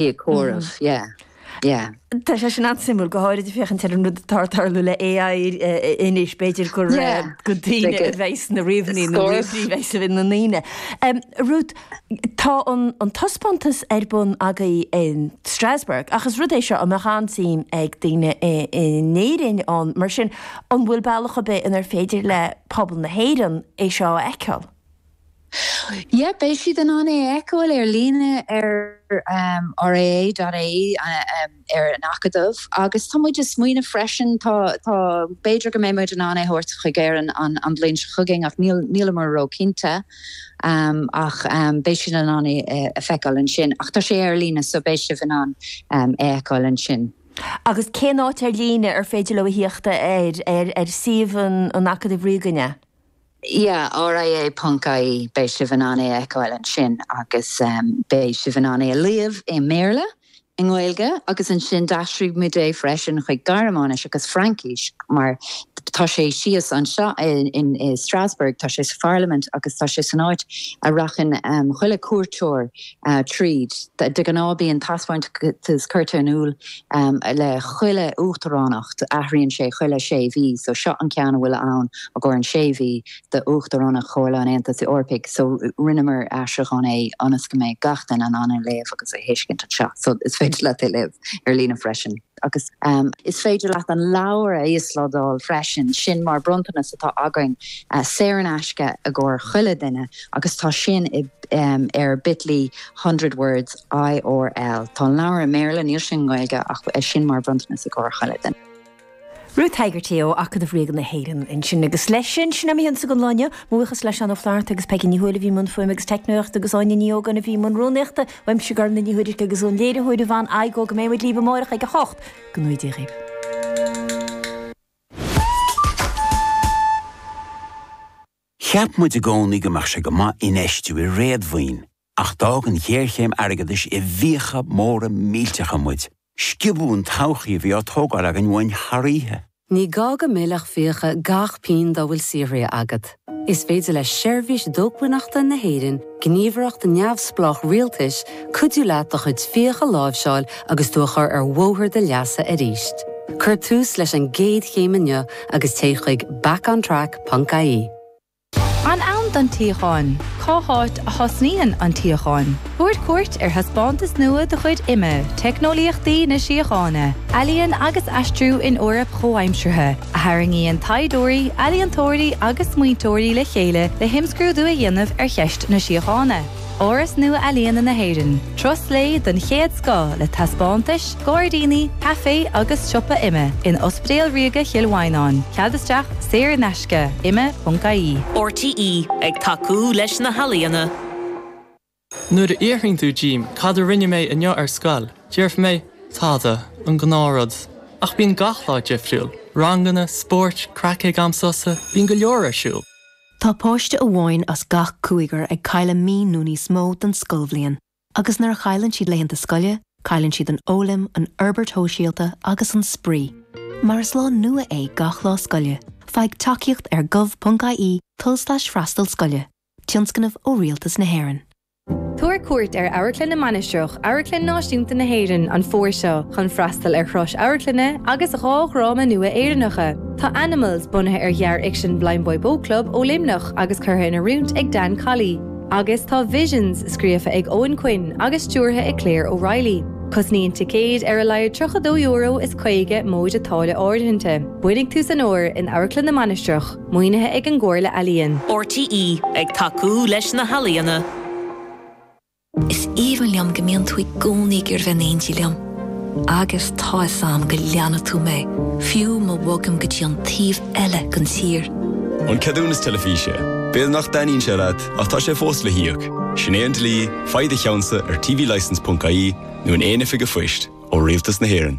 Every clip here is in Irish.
Éiceachóras, yeah, yeah. Tá sé sin an-suimiúil, go háirid ag féachaint ar an rud atá ag tarlú le AI anois, b'fhéidir gur go daoine a bheas sna ríomhairí nó i leith na ndaoine. Ruth, tá an taispeántas ar bun agaibh in Strasbourg ach is rud é seo a mbeadh an-suim ag daoine in Éirinn ann, mar sin an bhfuil bealach ar bith inar féidir le pobal na hÉireann é seo a fheiceáil? Yep, beidh siad in ann é a fheiceáil ar líne ar ria.ie, ar an Acadamh, agus tá muid ag smaoineamh freisin, tá, tá, b'fhéidir go mbeidh muid in ann é a thabhairt chuig Éirinn an, an bhliain seo chugainn ach níl, níleamar ró chinnte, ach beidh siad in ann é a fheiceáil ansin, ach tá sé ar líne so beidh sibh in ann é a fheiceáil ansin. Agus cén áit ar líne ar féidir leo a thíocht air, ar, ar suíomh an, an Acadaimh Ríoga an ea? Yeah, R.I.A. ponc I.E. beidh sibh in ann é a fheiceáil ansin agus beidh sibh in ann é a léamh i mBéarla, i nGaeilge agus ansin d'aistrigh muid é freisin chuig Gearmáinis agus Fraincis mar tá sé síos anseo in Strasbourg, tá sé sa Pharlaimint agus tá sé san áit a rachann chuile cuairteoir tríd. De ghnáth bíonn taispeántas curtha in iúl le chuile uachtaránacht, athraíonn sé chuile sé mhí, so seo an ceann a bhfuil ann i gcomhair an sé mhí d'Uachtaránacht Chomhairle an Aontais Eorpaigh, so rinneamar aistriúchán é ionas go mbeidh gach duine in ann é a léamh agus a thuiscint anseo, so is féidir leat é léamh ar líne freisin. agus. Is féidir leat an leabhar a íoslódáil freisin, sin mar bronntanas atá againn, saor in aisce i gcomhair chuile duine, agus tá sin ar bit.ly hundred words IRL. Tá an leabhar i mBéarla, níl sé i nGaeilge, ach sin mar bhronntanas i gcomhair chuile duine. Ruth Hegarty ó Acadamh Ríoga na hÉireann ansin. Agus leis sin, sin a mbeidh againn daoibh don lá inniu. Mo bhuíochas le Seán Ó Flaithearta agus Peigí Ní Thuairisg a bhí i mbun fuaime agus teicneolaíochta agus Áine Ní Ógáin a bhí i mbun rúnaíochta. Uaimse Gormfhlaith Ní Thuairisg agus ón léiritheoir a bhain aghaidh ó go mbeidh muid libh amárach ag 8 go dté sibh slán. Cheap muid i gcónaí go mbeadh sé go maith infheistiú i réadmhaoin, ach d'fhág an ghéarchéim airgeadais i bhfiacha móra millteacha muid Sciobadh an todhchaí a bhí á tógáil againn uainn thar oíche. Ní gá go millfeadh fiacha gach pingin dá bhfuil saothraithe agat. Is féidir le Seirbhís Dócmhainneachta na hÉireann, gníomhaireacht neamhspleách rialtais, cuidiú leat do chuid fiach a láimhseáil agus tú a chur ar bhóthar do leasa arís. Cuir tús leis an gcéad chéim inniu agus téigh chuig back-on-track ponc ie. An ann don tsíocháin? Cá háit a thosnaíonn an tsíocháin? Tabhair cuairt ar thaispeántas nua de chuid IMMA, Teicneolaíochtaí na Síochána, Ealaín agus Aistriú in Eoraip Chomhaimseartha, a tharraingíonn taighdeoirí, ealaíontóirí agus smaointeoirí le chéile le himscrúdú a dhéanamh ar cheist na síochána. Áras Nua-Ealaíne na hÉireann, turas lae den chéad scoth le taispeántais, gairdíní, caifé agus siopa, IMMA in Ospidéal Ríoga Chill Mhaighneáin, cead isteach saor in aisce, imma.ie. RTÉ ag tacú leis na healaíona. Nuair a fhiafraíonn tú díom cad a rinne mé inniu ar scoil, déarfaidh mé, tada, an gnáthrud. Ach bíonn gach lá difriúil, ranganna, spóirt, craic ag am sosa, bíonn go leor ar siúl. Tá páiste amháin as gach cúigear ag cailleadh mí nó níos mó den scoilbhliain, agus nuair a chailleann siad laethanta scoile, cailleann siad an fhoghlaim, an fhorbairt shóisialta agus an spraoi. Mar is lá nua é gach lá scoile, faigh tacaíocht ar gov.ie tulslais freastal scoile, tionscnamh ó Rialtas na hÉireann. Tabhair cuairt ar Amharclann na Mainistreach, Amharclann Náisiúnta na hÉireann, an fómhar seo chun freastal ar shrois amharclainne agus dhá dhráma nua Éireannacha. Tá Animals, bunaithe ar ghearrfhicsean Blindboy Boatclub ó Luimneach agus curtha in oiriúint ag Dan Colley, agus tá Visions, scríofa ag Eoghan Quinn agus stiúrtha ag Claire O'Reilly. Cosnaíonn ticéid ar a laghad €32 is 50 móide táille áirithinte. Beannaigh tús an fhómhair in Amharclann na Mainistreach. Maoinithe ag an gComhairle Ealaíon. RTÉ ag tacú leis na healaíona. Is aoibhinn liom go mbíonn tú i gcónaí ag iarraidh bheith in éindí liom. Agus tá fhios a'm go leanfaidh tú mé, fiú ma bhogaim go dtí an taobh eile den tír. An ceadúnas teilifíse. B'fhéidir nach dtaitníonn sé leat, ach tá sé fós le híoc. Sin é an dlí, faigh do cheannsa ar tvlicence.ie nó in aon oifig a' phoist, ó Rialtas na hÉireann.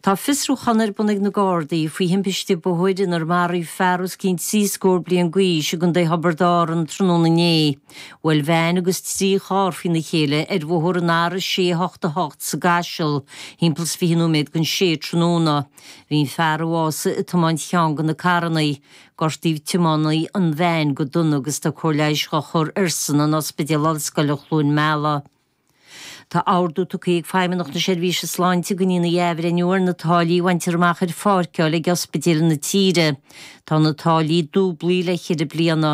Tá fiosrúchán ar bun ag na Gardaí faoi thimpiste bóthair inar maraíodh fear os cionn trí scór bliain d'aois i gContae Thiobraid Árann tráthnóna inné. Bhuail veain agus trí charr faoina chéile ar bhóthar an R688 sa gCaiseal thimpeall is fiche nóiméad don sé tráthnóna. Bhí an fear a bhásaigh ag tiomáint cheann de na carranna. Gortaíodh tiománaí an veain go dona agus tá cóir leighis á chur airsean in Ospidéal Ollscoile Chluain Meala. Tá ordú tugtha ag Feidhmeannacht na Seirbhíse Sláinte go ndéanfaí athbhreithniú ar na táillí a bhaintear amach ar pháirceáil ag ospidéil na tíre. Tá na táillí dúblaithe le ceithre bliana.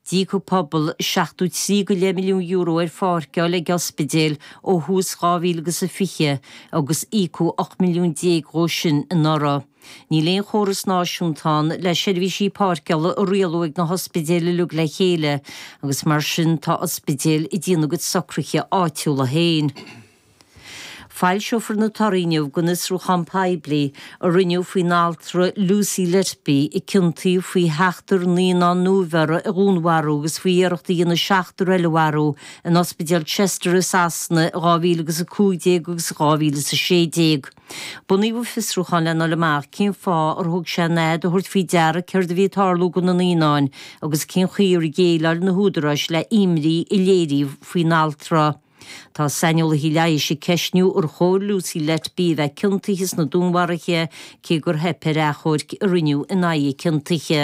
D'íoc an pobal seachtó trí go leith milliún euro ar pháirceáil ag ospidéil ó thús 2020 agus íocadh 18 milliún dhó sin anuraidh. Níl aon chóras náisiúnta ann le seirbhísí páirceála a rialú ag na hospidéil uilig le chéile, agus mar sin tá ospidéil ag déanamh a gcuid socruithe áitiúla féin. Foilseofar na torthaí inniu den fhiosrúchán poiblí a rinneadh faoin altra Lucy Letby, a ciontaíodh faoi sheachtar naíonán nuabheirthe a dhúnmharú agus faoi iarracht a dhéanamh seachtar eile a mharú in Ospidéal Chester i Sasana in 2015 agus in 2016. Bunaíodh fiosrúchán le ndul amach cén fáth ar thóg sé an fhad a thabhairt faoi deara céard a bhí ag tarlú do na naíonáin agus cén chaoi ar dhéileáil na húdaráis le himní a léiríodh faoin altra. Tá saineolaithe leighis ag ceistniú ar chóir Lucy Letby a bheith ciontaithe sna dúnmharuithe, cé gur theip ar achomharc a rinneadh in aghaidh a ciontaithe.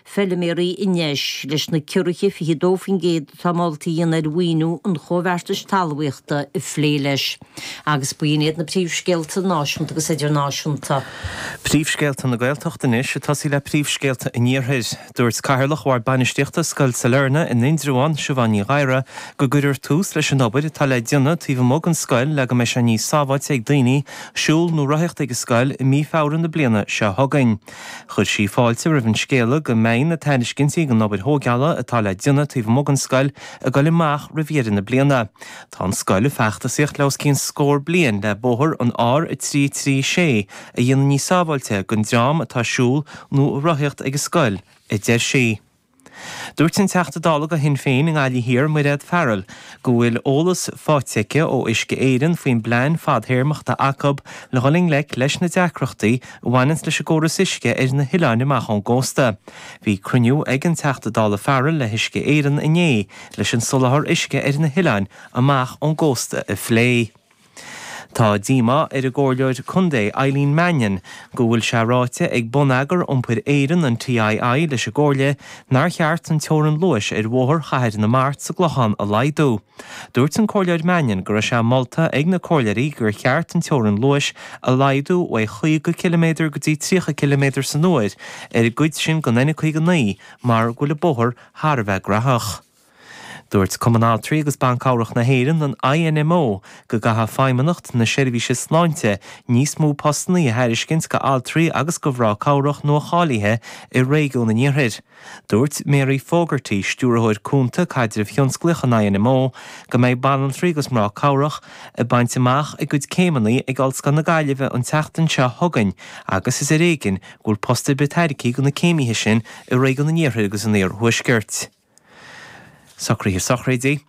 feilméaraí anois. Leis na ciorruithe 22% atá molta a dhéanamh ar mhaoiniú an Chomhbheartais Talmhaíochta a phlé leis. Agus b'in iad na príomhscéalta náisiúnta agus idirnáisiúnta. Príomhscéalta na Gaeltachta anois ag tosaí le príomhscéalta an Iarthair. Dúirt Cathaoirleach Bhord Bainistíochta Scoil Sailearna in Indreabhán, Siobhán Ní Ghadhra, go gcuirfear tús leis an obair atá le déanamh taobh amuigh den scoil le go mbeidh sé níos sábháilte ag daoine siúl nó rothaíocht ag an scoil i mí Feabhra na bliana seo chugainn. Chuir sí fáilte roimh an scéala go mbeidh na tairiscintí don obair thógála atá le déanamh taobh amuigh den scoil ag dul amach roimh dheireadh na bliana. Tá an scoil ag feachtasaíocht le os cionn scór bliain le bóthar an R336 a dhéanamh níos sábháilte don dream atá ag siúl nó ag rothaíocht ag an scoil, a deir sí. Dúirt an Teachta Dála do Shinn Féin i nGaillimh Thiar, Mairéad Farrell, go bhfuil eolas faighte aici ó Uisce Éireann faoin bplean fadthéarmach atá acu le dhul i ngleic leis na deacrachtaí a bhaineann leis an gcóras uisce ar na hoileáin amach ón gcósta. Bhí cruinniú ag an Teachta Dála Farrell le hUisce Éireann inné leis an soláthar uisce ar na hoileáin amach ón gcósta a phlé. Tá díomá ar an gComhairleoir Contae Eileen Mannion go bhfuil sé ráite ag Bonneagar Iompair Éireann, an TII, leis an gComhairle nár cheart an teorainn luais ar Bhóthar Chathair na Mart sa gClochán a laghdú. Dúirt an Comhairleoir Mannion go raibh sé molta ag na Comhairleoirí gur cheart an teorainn luais a laghdú ó chaoga ciliméadar go dtí tríocha ciliméadar san uair ar an gcuid sin den N59 mar go bhfuil an bóthar thar a bheith gnaitheach. Dúirt Cumann Altraí agus Ban Cabhrach na hÉireann, an INMO, go gcaithfeadh Feidhmeannacht na Seirbhíse Sláinte níos mó postannaí a thairiscint do altraí agus do mhná cabhrach nua-cháilithe i réigiún an Iarthair. Dúirt Mary Fogarty, Stiúrthóir Cúnta Caidrimh Thionsclaíoch an INMO, go mbeidh banaltraí agus mná cabhrach ag baint amach a gcuid céimeannaí ag Ollscoil na Gaillimhe an tseachtain seo chugainn agus is ar éigin go bhfuil post ar bith tairgthe do na céimithe sin i réigiún an Iarthair agus an Iarthuaiscirt. Socruithe Sochraidí,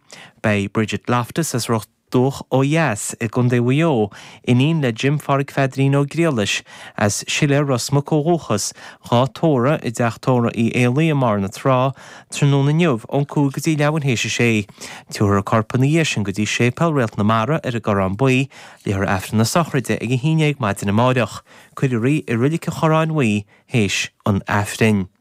Beidh Bridget Loftus as Ros Dumhach ó dheas i gContae Mhaigh Eo, iníon le Jim Pháraic Pheadairín Ó Griallais, as Siléar Ros Muc ó dhúchas, dhá tórramh i dTeach Tórraimh Uí Éalaí i mBarr na Trá, tráthnóna inniu ón 5 go dtí leathuair théis a 6. Tabharfar a corp ina dhiaidh sin go dtí Séipéal Réalt na Mara ar an gCorrán Buí, léifear Aifreann na Sochraide ag a haon dhéag maidin amáireach, cuirfear í i Reilig an Chorráin Bhuí théis an Aifrinn.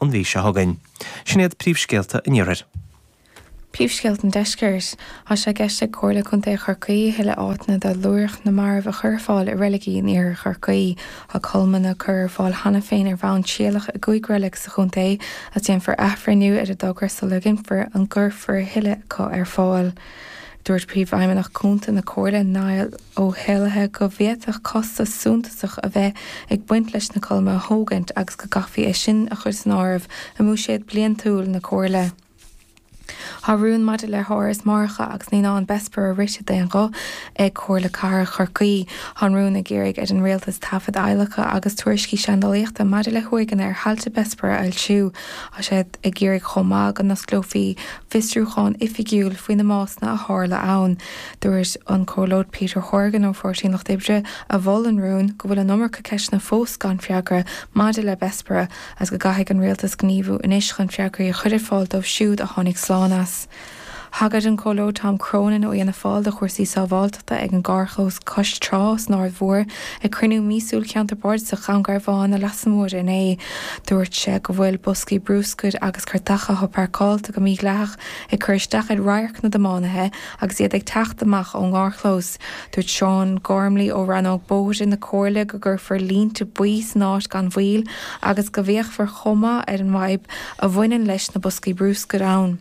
an mhí seo chugainn. Sin iad príomhscéalta an iarthair. Príomhscéalta an deiscirt. Tá sé i gceist ag Comhairle Contae Chorcaí a thuilleadh áiteanna do luaithreach na marbh a chur ar fáil i reiligí in iarthar Chorcaí. Tá colmlann á cur ar fáil cheana féin ar bhonn trialach i gcúig reilig sa chontae agus déanfar athbhreithniú ar an dtogra sula gcinnfear an gcuirfear a thuilleadh acu ar fáil. Dúirt Príomhfheidhmeannach Cúnta na Comhairle, Niall. Ó hÉalaithe go bhféadfadh costas suntasach a bheith ag baint leis na colmlanna a thógaint agus go gcaithfí é sin a chur san áireamh i mbuiséad bliantúil na Comhairle. Tá rún maidir le hÁras Máithreacha agus Naíonáin Bessborough rite d'aon ghuth ag Comhairle Cathrach Chorcaí. Tá an rún ag iarraidh ar an Rialtas taifead adhlactha agus tuairiscí seandálaíochta maidir le huaigheanna ar thailte Bessborough a fhoilsiú. Tá siad ag iarraidh chomh maith go n-osclófaí fiosrúchán oifigiúil faoi na básanna a tharla ann. Dúirt an Comhairleoir Peter Horgan ó Pháirtí an Lucht Oibre, a mhol an rún, go bhfuil an iomarca ceisteanna fós gan freagra maidir le Bessborough agus go gcaithfidh an rialtas gníomhú anois chun freagraí a chur ar fáil dóibh siúd a tháinig slán as. Thagair an Comhairleoir Tom Cronin ó Fhianna Fáil do chúrsaí sábháilteachta ag an gcarrchlós cois trá san Aird Mhór ag cruinniú míosúil Cheantar Bardasach Dhún Garbhán Leasa Móire inné. Dúirt sé go bhfuil boscaí bruscair agus cairteacha atá páirceáilte go mídhleathach ag cur isteach ar radharc na dtiománaithe Agus iad ag teacht amach ón gcarrchlós, dúirt Seán Gormley ó Rannóg Bóithre na Comhairle go gcuirfear línte buí san áit gan mhoill agus go bhféachfar chomh maith ar an bhfadhb a bhaineann leis na boscaí bruscair ann.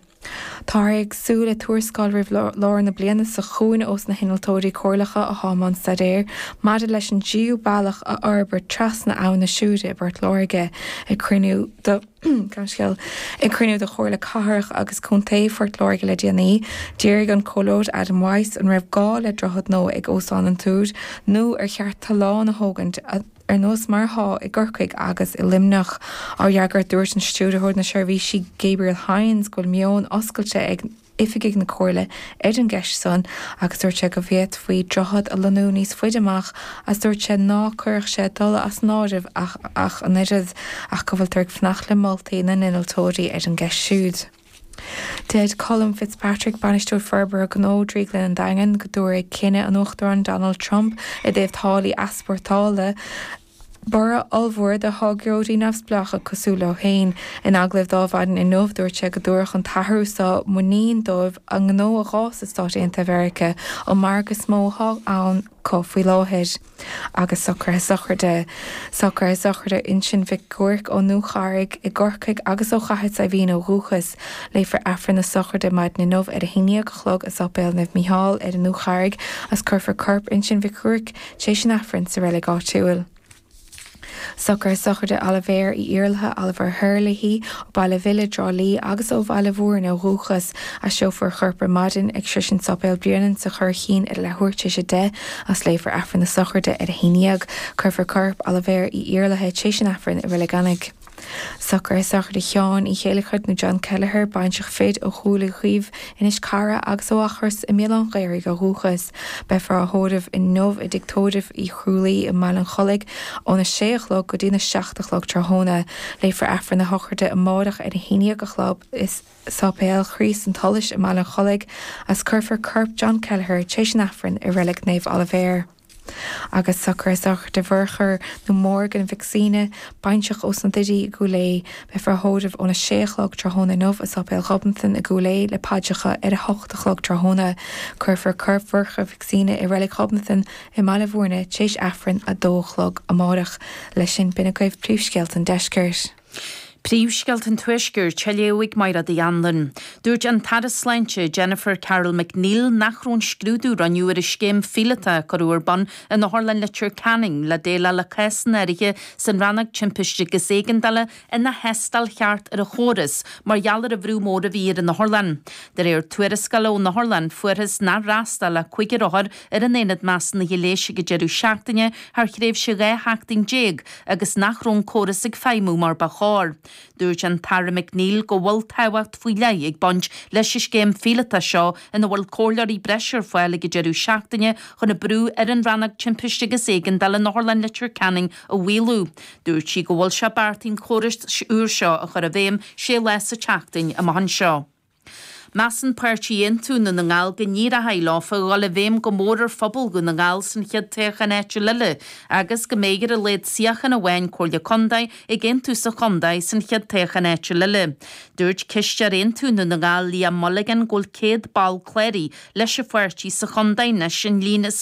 Táthar ag súil le tuarascáil roimh lár na bliana seo chugainn ós na hinnealtóirí comhairleacha atá i mbun staidéir maidir leis an dtríú bealach a fhorbairt trasna abhann na Siúire i bPort Láirge ag cruinniú de Ceannscéal, Ag cruinniú de Chomhairle Cathrach agus Contae Phort Láirge le déanaí, d'fhiafraigh an Comhairleoir Adam Wyse an raibh gá le droichead nua ag Óstán an Túir nó ar cheart tollán a thógaint ar nós mar atá i gCorcaigh agus i Luimneach. Á fhreagairt, dúirt an Stiúrthóir Seirbhísí Gabriel Hynes go bhfuil meon oscailte ag. oifigigh na Comhairle ar an gceist san agus dúirt sé go bhféadfaí droichead a lonnú níos faide amach agus dúirt sé ná cuirfeadh sé tollán as an áireamh ach an oiread ach go bhfuiltear ag fanacht le moltaí na n-innealtóirí ar an gceist siúd. Deir Colm Fitzpatrick, Bainisteoir Forbartha Gnó, Drioglann an Daingin, go dtabharfaidh cinneadh an Uachtaráin Donald Trump i dtaobh táillí easpórtála, borradh ollmhór do tháirgeoirí neamhspleácha cosúil leo féin. In agallamh dó maidin inniu, dúirt sé go dtabharfadh an t-athrú seo muinín dóibh a ngnó a fhás i Stáit Aontaithe Mheiriceá, an margadh is mó atá ann acu faoi láthair. Agus socruithe sochraide. Socruithe sochraide Uinsinn Mhic Giúirc ón Dúcharraig i gCorcaigh agus ó Chathair Saidhbhín ó dhúchas. Léifear Aifreann na sochraide maidin inniu ar a haon dhéag a chlog i Séipéal Naomh Mícheál ar an Dúcharraig is cuirfear corp Uinsinn Mhic Giúirc, tar éis an Aifrinn sa reilig áitiúil. Socrú sochraide Olibhéar Uí Iarlaithe, Oliver Herlihy, ó Bhaile an Bhile, Trá Lí, agus ó Bhaile Bhúirne ó dhúchas, aistreofar a chorp ar maidin ag sroisint Sáipéal Bhréanainn sa Churraichín idir leath huair tar éis a deich, agus léifear Aifreann na Sochraide ar a haon dhéag. Cuirfear corp Olibhéar Uí Iarlaithe, tar éis an Aifrinn, i Reilig Eanaigh. Socrú sochraide Sheáin Uí Chéilleachair nó John Kelleher, baintreach fir ó Chluain Dubh, Inis Carra, agus ó Eachros i mBéal Átha an Ghaorthaidh ó dhúchas. Beifear á thórramh inniu i dTigh Tórraimh Uí Chrualaoich i mBaile an Chollaigh ón 6 a chlog go dtí'n 7 a chlog tráthnóna. Léifear Aifreann na Sochraide amáireach ar a haon déag a chlog i Sáipéal Chríost an tSolais i mBaile an Chollaigh agus cuirfear corp John Kelleher tréis an Aifrinn i Reilig Naomh Oilibhéar. Agus socrú sochraide Mhurchadh nó Morgan Mhic Suibhne, baintreach ós na Doirí i gCúil Aodha, beifear á thórramh óna sé a chlog tráthnóna inniu i Sáipéal Ghobnatan i gCúil Aodha le paidreacha ar a hocht a chlog tráthnóna. Cuirfear corp Mhurchadh Mhic Suibhne i Reilig Ghobnatan i mBaile Mhúirne tar éis Aifreann a dó a chlog amáireach. Leis sin, b'in agaibh príomhscéalta an Deiscirt. Príomhscéalta an Tuaiscirt, á léamh ag Michelle Nic Grianna. Dúirt an tAire Sláinte, Jennifer Carroll MacNeill nach raibh an scrúdú a rinneadh ar an scéim phíolóta a cuireadh ar bun in Otharlann Leitir Ceanainn le déileáil le cásanna áirithe san Rannóg Timpiste agus Éigeandála ina thástáil cheart ar an chóras mar gheall ar an bhrú mór a bhí ar an otharlann. De réir tuarascála ón otharlann, fuarthas nár fhreastail ach cúigear othar ar an Aonad Measúnaithe Leighis ag an deireadh seachtaine thar thréimhse 12 sheachtain agus nach raibh an córas ag feidhmiú mar ba chóir. Dúirt an tAire McNeill go bhfuil tábhacht faoi leith ag baint leis an scéim phíolótach seo ina bhfuil comhairleoirí breise ar fáil ag an deireadh seachtaine chun an brú ar an Rannóg Timpiste agus Éigeandála in Otharlann Leitir Ceanainn a mhaolú. Dúirt sí go bhfuil sé beartaithe an córas úr seo a chur i bhfeidhm sé lá sa tseachtain amach anseo. Measann Páirtí Aontú Dhún na nGall go n-éireochaidh leofa dhul i bhfeidhm go mór ar phobal Dhún na nGall san chéad toghchán áitiúil eile agus go mbeidh ar a laghad suíochán amháin Comhairle Contae ag Aontú sa chontae san chéad toghchán áitiúil eile. Dúirt Cisteoir Aontú Dhún na nGall Liam Mulligan go bhfuil 100 ball cláraithe leis an pháirtí sa chontae anois an líon is